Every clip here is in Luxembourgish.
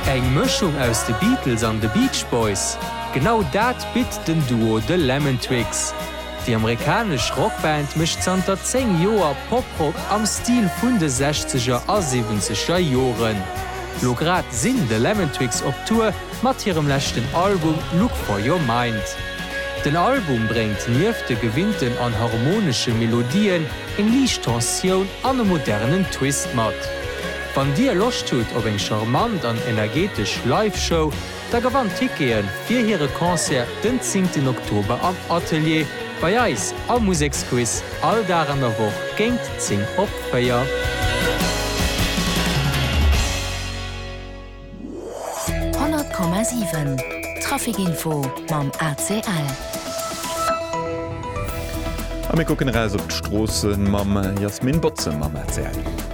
Eng Mëschung aus de Beatles an de Beach Boys? Genau dat bitt den Duo The Lemon Twigs. Déi amerikanesch Rockband mécht zanter 10 Joer Poprock am Stil vun de sechzeger a siwwenzeger Joren. Lo grad sinn The Lemon Twigs op Tour mat hirem leschten Album Look For Your Mind. Den Album bréngt nieft de gewinnten an harmonesche Melodien eng liicht Tensioun an e modernen Twist mat. Wann dir Loscht hutt op eng charmant an energetesch Live Show, da gewannt Tickete fir hire Concert den 10 Oktober am Atelier bei eis am Museksquiz, all Dag an der Woch géint 10 op 4. 100,7 Trafic Info mam ACL. A mir kucken eraus op d'Stroossen mam Jasmin Botze mam ACL.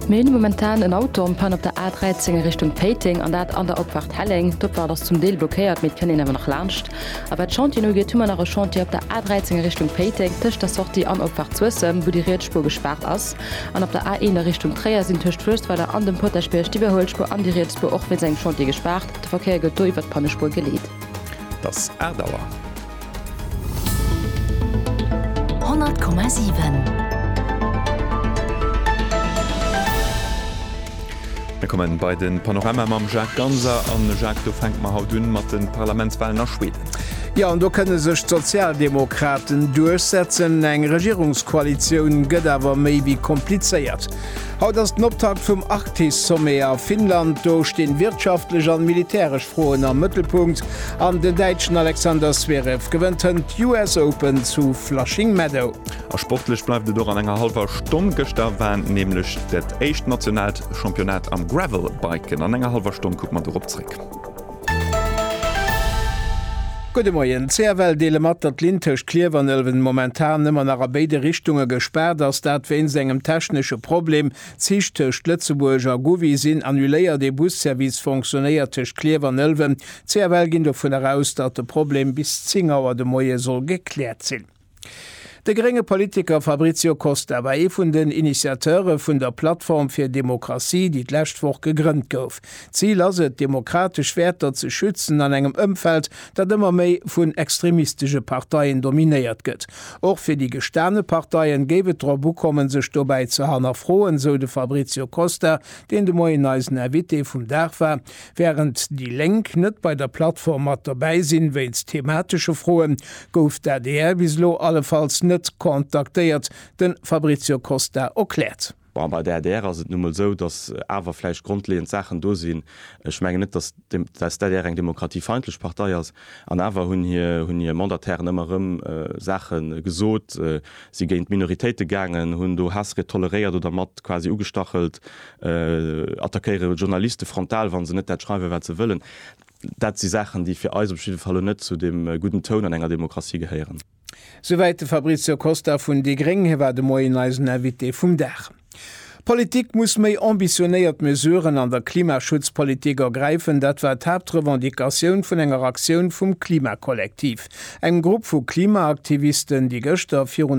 Mir hunn momentan en Auto en panne op der A13 a Richtung Péiteng, an dat an der Opfahrt Helleng. D'Opfahrt ass zum Deel blockéiert, mee et kënnt een awer nach laanscht. A wat d'Chantien ugeet, hu mer nach e Chantier op der A13 a Richtung Péiteng, tëscht der Sortie an Opfahrt Suessem, wou déi riets Spuer gespaart ass. An op der A1 a Richtung Tréier sinn tëscht Fürstweiler an dem Potaschbierg d'Iwwerhuelspuer an déi riets Spuer och wéinst engem Chantier gespaart. De Verkéier gëtt do iwwert d'Pannespuer geleet. Et ass 8 Auer. 100,7. Mir kommen bei den Panorama mam Jacques Ganser. An Jacques, do fänken mer haut un mat den Parlamentswahlen a Schweden. Jo, an do kënne sech d'Sozialdemokraten duerchsetzen. Eng Regierungskoalitioun gëtt awer méi wéi komplizéiert. Haut ass den Optakt vum Arktis-Sommet a Finnland. Do stinn wirtschaftlech an militäresch Froen am Mëttelpunkt. An den Däitschen Alexander Zverev gewënnt hënt d'US Open zu Flushing Meadow. A sportlech bleift et och an enger hallwer Stonn. Gëschter war nämlech dat éischt nationaalt Championnat am Gravelbiken. An enger hallwer Stonn kucke mer dorop zréck. Gudde Moien. CFL deele mat, datt d'Linn tëscht Klierf an Ëlwen momentan ëmmer nach a béide Richtunge gespaart ass. Dat wéinst engem technesche Problem. D'Zich tëscht Lëtzebuerg a Gouvy sinn annuléiert. Ee Busservice fonctionéiert tëscht Klierf an Ëlwen. D'CFL ginn dovunner aus, datt de Problem bis 10 Auer de Moie soll gekläert sinn. De grénge Politiker Fabrizio Costa war ee vun den Initiateure vun der Plattform fir Demokratie, déi d'lescht Woch gegrënnt gouf. D'Zil ass et, demokratesch Wäerter ze schützen an engem Ëmfeld, dat ëmmer méi vun extremistesche Parteien dominéiert gëtt. Och fir déi gestane Parteien géif et drop ukommen, sech dobäi ze hannerfroen, sou de Fabrizio Costa, deen de Moien eisen Invité vum Dag war. Wärend déi Lénk net bei der Plattform mat dobäi sinn, wéinst thematesche Froe gouf d'ADR bis elo allefalls net kontaktéiert, de Fabrizio Costa erkläert. Bon, bei der adr ass et nu emol esou, datt awer vläicht grondleeënd Saachen do sinn. Ech mengen net, datt d'ADR eng demokratiefeindlech Partei ass. An awer hunn hir Mandatairen ëmmer erëm Saache gesot, si géint Minoritéite gaangen, hunn do Haassried toleréiert oder mat quasi ugestachelt, attackéiere Journaliste frontal, wa se net dat schreiwen, wat se wëllen. Dat si Saachen, déi fir eis op jidde Fall net zu deem gudden Toun an enger Demokratie gehéieren. Souwäit de Fabrizio Costa vun déi gréng. Hie war de Moien eisen Invité vum Dag. D'Politik muss méi ambitionéiert Mesuren an der Klimaschutzpolitik ergräifen, dat war d'Haaptrevendicatioun vun enger Aktioun vum Klimakollektiv, engem Grupp vu Klimaaktivisten, déi gëschter virun